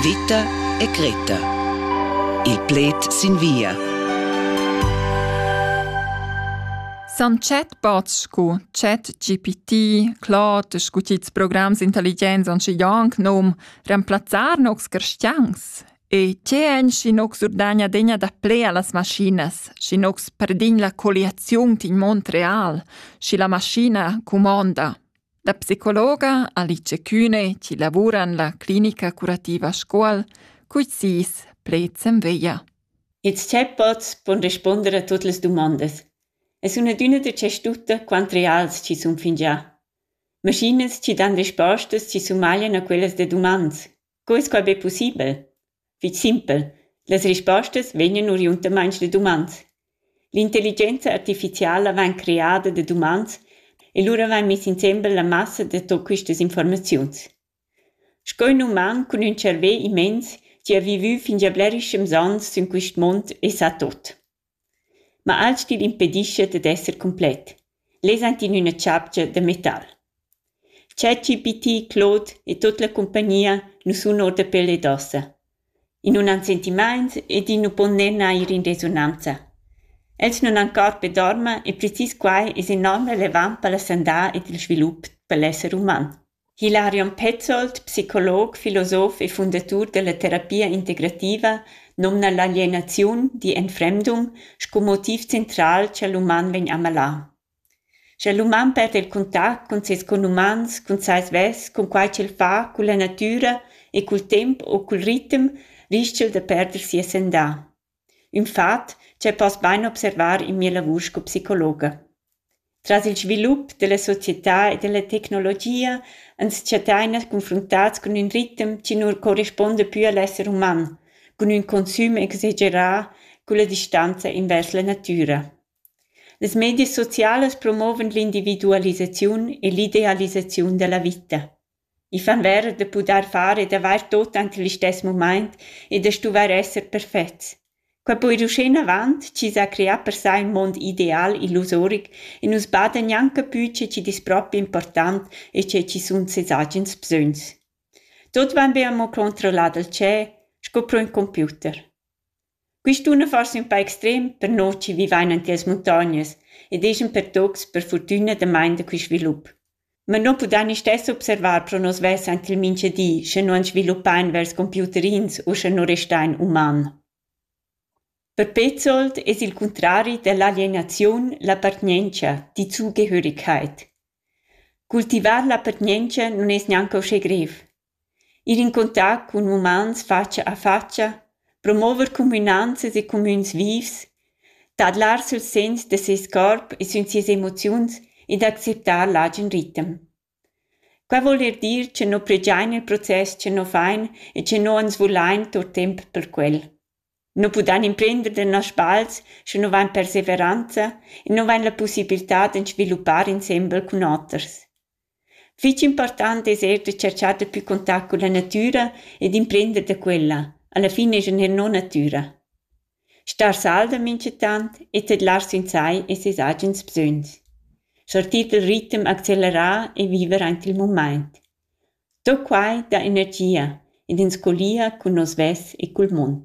Vita e Greta. Il pled sin via. San chat bots scu ChatGPT, Claude, scu tils programs intelligenza on schi janc nom remplazzar nocs cristians. E tge en schi nocs urdagna degna da plea las maschinas, schi nocs perdign la colliaziun tin Montreal, schi la maschina cumonda. La psicologa Alice Kühne chi lavura in la clinica curativa Scuol culs sis pleds en veglia. Its chat pots pon responder a tuot las dumondas. Es üna düna da tschestutta quant reals chi sun fingià. Maschinas chi dan respostas chi sumaglian a quellas da dumans. Quei quei be pussibel. Fetg simpel. Las rispostas vegnan oriundamain da dumans. L'intelligenza artificiala vegn creada da dumans e lura vegn mess insembel la massa da tot questas informaziuns. Sco ün uman cun ün cervè immens chi ha vivü fingià blerischems ans sün quist mond e sa tot. Ma alch'tin impedischa dad esser cumplet. Lez ans in üna chapcha da metal. ChatGPT, Claude e tut la cumpagnia nu sun our da pel ed ossa. I nun han sentimaints ed i nu pon ner neir in resonanza. Els nun han cor per dormer e precis quai es enorm relevant per la sandà ed il svilup per l'esser uman. Hilarion Petzold, psicolog, filosof e fundatur dalla terapia integrativa, numna l'alienaziun digl enfremdum sco motiv central cha l'uman vegn amalà. Scha l'uman perda il contact cun ses conumans, cun sai svess, cun quai ch'el fa, culla natüra e cul temp u cul ritem, rischa'l da perder sia sandà. ün fat cha poss bain observar in mia lavur sco psicologa. Tras il svilup della società e della tecnologia ans chattain confruntats cun ün ritem chi nu correspuonda pü a l'esser uman, cun ün consüm exagerà culla distanza invers la natüra. Las medias socialas promovan l'individualisaziun e l'idealisaziun da la vita. i fan vera da pudair far ed avair tot ante listess mumaint e da stuvair esser perfets. Quai po ir uschenavant chi s'ha creà per sai ün mond ideal illusoric e nus bada gnanca pü che chi'd es propi important e che chi sun seis agens bsögns. Tuot vain be amo controllà dal tschep sco pro ün computer. Quist un forsa ün pa extrem per nus chi vivain in tias muntognas ed eschan per tuots per furtüna damain da quist svilup. Ma nu pudain istess observar pro nus svess aint il mincha di, sche nu ans sviluppain vers computerins u sche nu restain uman. Per Petzold es il cuntrari da l'alienaziun l'appartgnientscha, die Zugehörigkeit. Cultivar l'appartgnientscha nun es gnanca uschè grev. Ir in contact cun umans fatscha a fatscha, promover cumünanzas e cumüns vivs, tadlar süls segns da seis corp e sün sias emoziuns ed acceptar l'agen ritem. Quai voul ir dir cha no pregiain il process cha no fain e cha no ans vulain tuot temp per quel. No pudain imprender da nas spals sche no vain perseveranza e no vain la pussibiltà d'ans sviluppar insembel cun oters. Fich important es eir da tscherchar dapü contact culla natüra e d'imprender da quella. Alla fin es ün no natüra. Star salda minchatant e tedlar sün sai es es agens bsögns. Sortir dal ritm accelerà e viver aint il mumaint. Do quai dà energia ed ens collia cun nos vess e cul mund.